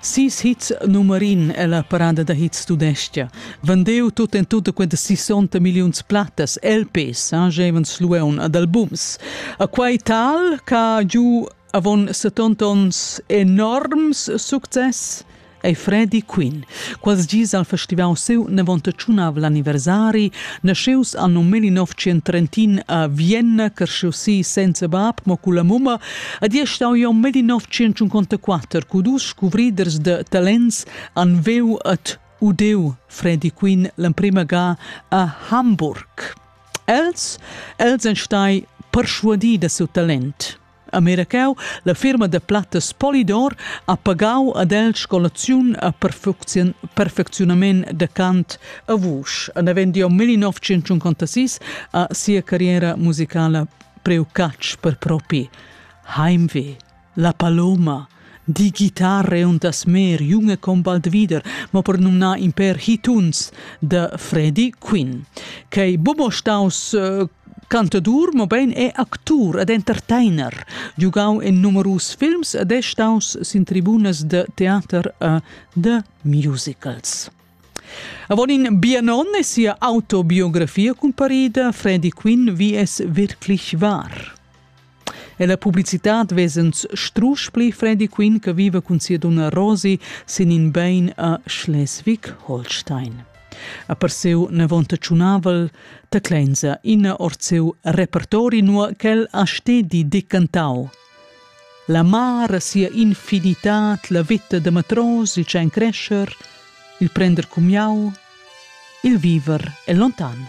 Sis hits numerin ella parada da hits tudescha. Vendeu tut en tut quella 60 milliuns plattas LPs, Angevin Slueun ad albums. A quai tal ca giu avon 70 ons enorms success ei Freddy Quinn. Quals gis al festival seu nevonta tschunav l'anniversari, nasceus anno 1931 a Vienna, cresciu si senza bab, mo cu la mumma Ad ei stau jeu melli 954 cu dus scuvriders de talents han veu et udeu Freddy Quinn l'emprema ga a Hamburg. Els, els ein stai perschuadi da siu talent. A Miracau, la firma de plattas Polydor ha pagau ad el scolaziun a perfecziunament de cant a vusch. En avend jau 1956 a sia carriera musicala Preu catsch per propi. Heimweh, la paloma, die Gitarre und das Meer, Junge komm bald wieder, ma per numnar in per hituns de Freddie Quinn, che bubo staus äh, cantadur, ma bein è actur ed entertainer, giugau in numerus films ed è staus sin tribunas de teater e de musicals. Avon in bianon è sia autobiografia cumparida Freddy Quinn wie es wirklich war. E la publicitad vesens strusch pli Freddy Quinn che viva cun sia donna Rosie sin in bein a Schleswig-Holstein. A per seu nevonta tschunavel, taclenza ina or seu repertori nua ch'el ha stedi decantau – La mar a sia infinitad, la veta da matros, il tschein crescher, il prender cumiau, il viver è lontan.